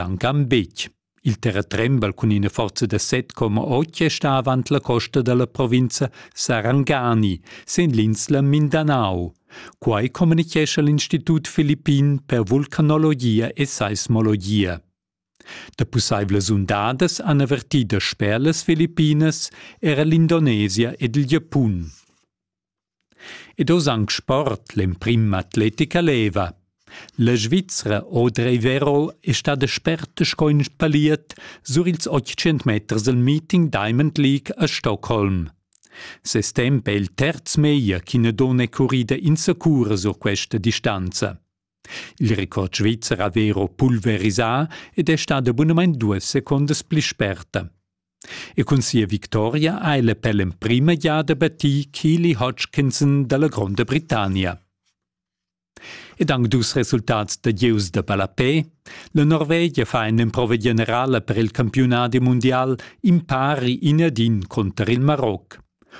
Ancan betg. Il terratren val cun ina forza da 7,8 sta avant la costa dalla provinza Sarangani, sin l'insla Mindanao. Quai communichescha l'Institut Filippin per vulcanologia e seismologia. Da pussaivlas undadas han avertì da sper las Filippinas era l'Indonesia ed il Giapun. Ed oz anc sport, l'emprim atletica leva. La Svizra Audrey Vero è stada sperta sco in paliet sur ils 800 meters del meeting Diamond League a Stockholm. Ses temp è il terz meglio ch'ina donna è currida insacura sur questa distanza. Il record svizzer ha vero pulverisà ed è stada bunamain duas secondas pli sperta. E cun sia victoria ha el per l'emprima giada battì Keely Hodgkinson da la Gronda Britannia. Ed anc dus resultats da gieus da ballapè. La Norvegia fa in'emprova generala per il campiunadi mundial impari in ad in cunter il Maroc.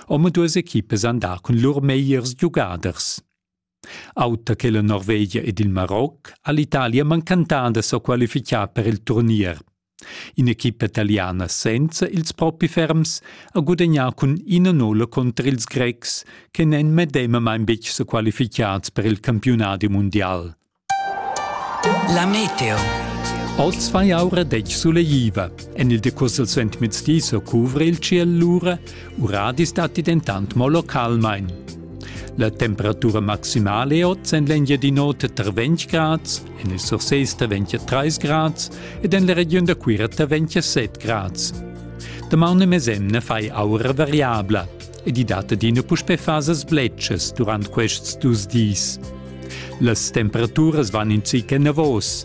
Omaduas equipas han dà cun lur megliers giugaders. Auter che la Norvegia ed il Maroc ha l'Italia mancantà da sa qualificar per il turnier. In'equipa italiana senza ils propi ferms ha gudagnà cun ina nulla cunter ils Grecs che n'èn medemamain betg sa qualificads per il campiunadi mundial. La meteo. Oz fa aura detg sulegliva. En il decuss al suentmezdi sa cuvra il ciel lura Uradis datti dentant mo localmain. La temperatura maximale è oz en l'Engiadin'Ota tar 20 grads, en il Surses tar 23 grads ed en la regiun da Cuira tar 27 grads. Damaun e mesemna fai aura variabla ed i dat adina puspè fasas bletschas durant quests dus dis. Las temperaturas van in zic enavos,